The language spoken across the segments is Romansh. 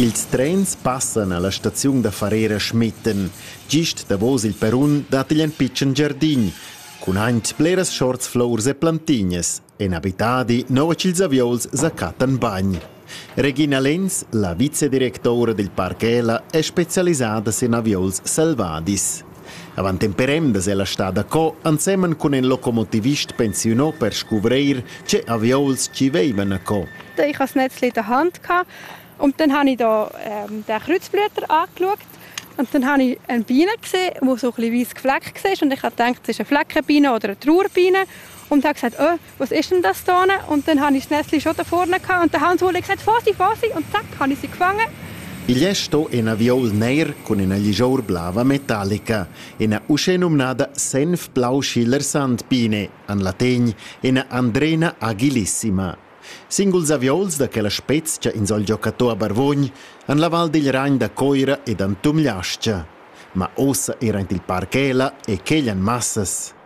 Ils trens passan alla staziun da Farera a Schmitten. Gist davos il perrun dat igl en pitschen giardin cun aint bleras schorts, flours e plantignas. En abitadi, nua ch'ils avieuls sa cattan bagn. Regina Lenz, la vicedirectora dil parc Ela, è specialisada sin avieuls selvadis. Avant en perendas è la stada co ensemen cun in locomotivist pensiunò per scuvreir ce avieuls ci veivan a co. Ich habe das Netz in der Hand gehabt und dann habe ich da ähm, den Kreuzblätter angeschaut und dann habe ich eine Biene gesehen, die so ein bisschen weiss gefleckt war und ich habe gedacht, das ist eine Fleckenbiene oder eine Trauerbiene Und er gesagt, oh, was ist denn das da? Und dann habe ich das Nestli schon da vorne gehabt. Und der Hans hat gesagt, Fossi, Fossi. Und zack, habe ich sie gefangen. Igl è sto ina viol ner cun ina ligior blava metallica, ina uschè nomnada senf blau schiller sandpine, an lategn ina Andrena agilissima. Singuls aviols da quella spezia in sol giocatò a Barvogn han la val digl Ragn da Coira ed an Tumliascia. Ma ossa era il parchela e quegl an massas.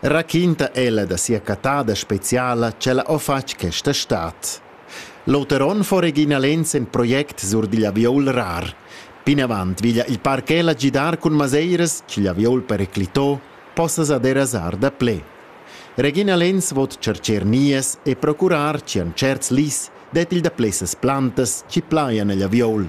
raquinta ella da sia cattada speciala ch'ella ho fatg questa stad. L'oter on fo Regina Lenz in project sur digl aviol rar. Pinavant veglia il parc ella gidar cun maseiras ch'igl aviol periclitò possa sa derasar da ple. Regina Lenz vot cercher nies e procurar chi an certs lis det il da plessas plantas chi plaian egl aviol.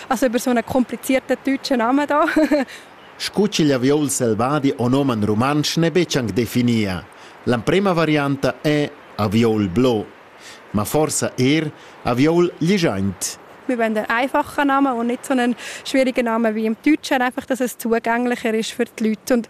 Also über so einen komplizierten deutschen Namen da. Scu ch'igl aviol selvadi o nomen rumantsch n'è betg anc definia. L'emprema varianta è aviol blo. Ma forsa er aviol ligiaint. Wir wollen einen einfachen Namen und nicht so einen schwierigen Namen wie im Deutschen, einfach, dass es zugänglicher ist für die Leute. Und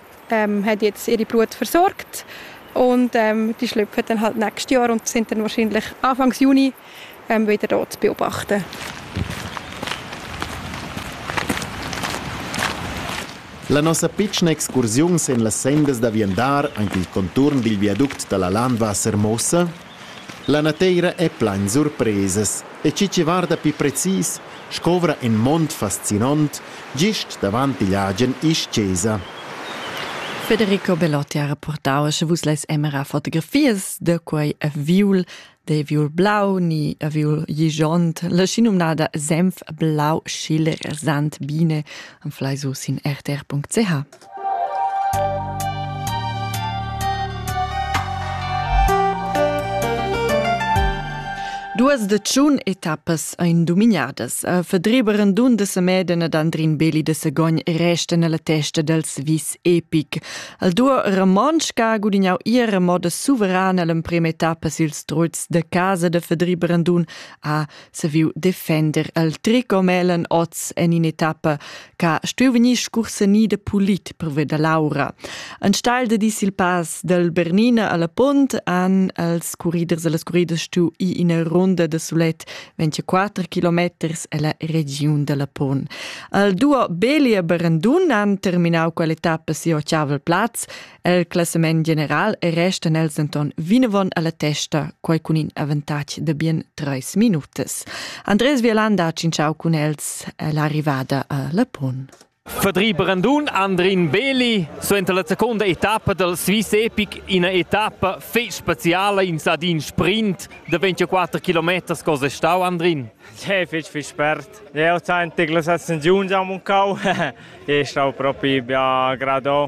ähm, hat jetzt ihre Blut versorgt und ähm, die Schlüpfe hat dann halt nächstes Jahr und sind dann wahrscheinlich Anfang Juni ähm, wieder dort zu beobachten. La nossa pitschna excursiun sin las sendas da viandar, anche il conturn dil viaduct dalla Landwassermossa, La nateira è plain surpresas e chi chi varda pii precis, scovra ün mond fascinant gist davant igl agen isch-chesa. Federico Belotti ha reportau che vus leis emera fotografias da quei aviul, de aviul blau ni aviul gigiont, la schinumnada Senf blau schil rasant bine, am flai su sin rtr.ch. Duas de tschun etappas ein dominadas a fedreber en dun de semeden ed Andrin Beli de Segogn resten alla testa dels vis epic. Al duo Ramonschka gudignau ihre moda suverana l'emprem etappa sils truts de casa de fedreber en dun a saviu defender el tricomelen oz en in'etappa che stuiu vegnir scursanida pulit pervia da l'aura. Enstagl de dis il pass del Bernina alla Pont han els curriders e las curriders stu i ina runda de sulet 24 kilometers ella regiun della Pont. Al duo Beli e Berendun han terminau quell'etappa si Ocavel Platz El classament general restan els denton vinavon alla testa, quei cun in avantatg de bien treis minutas. Andres Violanda ha cinciau cun els l'arrivada a Lapon. Fadri Brandun, Andrin Beli, suenter la seconda etappa del Swiss Epic, ina etappa fetg speciala in sadin sprint de 24 km, cosa stau Andrin? Che fetg fetg spert. Eu senti che la sensazione già muncau e stau propi bia gradò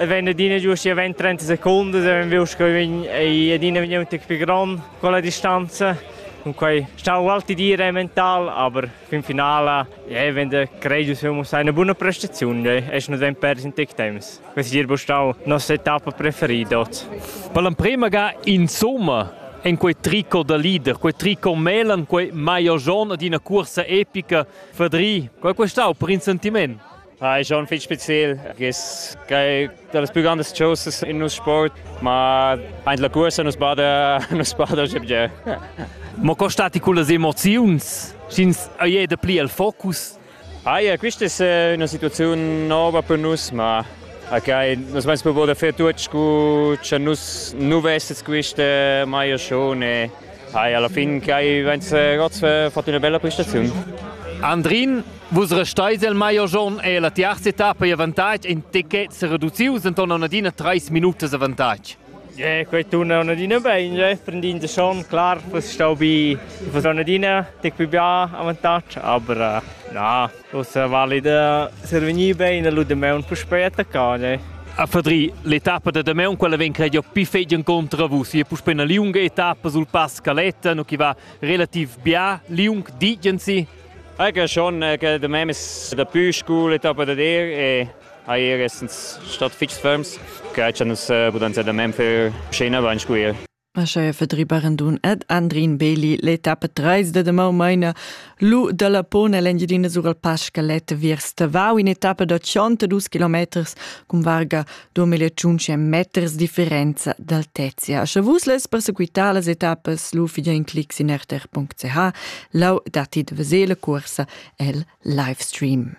E vegn adina giusti a 20-30 secundas e vegn viu sco vegn ei adina vegn un tec pli gron con la distanza. Cunquei stau alti dire mental, aber fin finala ja, wenn der courageous muss eine buona prestazione, ja, es nos vegn pers in tec temps. Questi dir bo stau nostra etappa preferida. Per l'emprema ga insomma en quei tricot da leader, quei tricot melan, quei maior giorn ad ina cursa epica, fadri, quei questau per in sentiment. Ah, è schon fitg spezial. Es che das più grandes choses in nos sport, ma anche la cursa nos bada nos bada jebje. Ma costati con le emozioni? Schins è da pli il focus? Ah ja, questa è una situazione nuova per noi, ma okay, nos mans provo da fare tutto cu che nus nu vestes queste mai schone. Ah ja, alla fine che hai vense Gotz fatto una bella prestazione. Andrin, Vus resteis il maior giorn e la tiarza etappa e avantatg in ticket sereduzius enton adina treis minutas avantatg. Yeah, quei turna adina bein, je. prendinde schon, klar, fuss stau bi fuss adina tic più bia avantatg, aber uh, na, ussa valida servegnir bein e lu de meun puspei attaccau, je. A Fadri, l'etappa da Demeun, quella vegn credio più fegien contra vus. E puspei una liunga etappa sul pass Caletta, no chi va relativ bia liung, digensi? Anche schon che da me da più scool etappa da dir e ha ir essens stat fitch ferms che cha nus pudan ser da mem fer scena bain squir. Aschia verdribaran dun ed Andrin Beli l'etappa 3 da demau meina lu dalla pona l'Engiadina sur al Pascalet viers Tavau in etappa da 62 km cun varga domele tschunche meters differenza d'altezia. Sche vus les persequitar las etappas lu fidja in clic sin rtr.ch, lau datti de vesele cursa el livestream.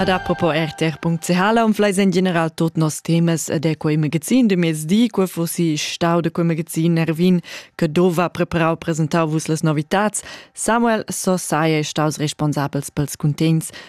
Ad apropos rtr.ch am fleis en general tot nos temas ed è quei magazin de mezdi, quo fossi stau de quel magazin Nervin che dova preparau presentau vus les novitats. Samuel so sai è staus responsabels pels cuntents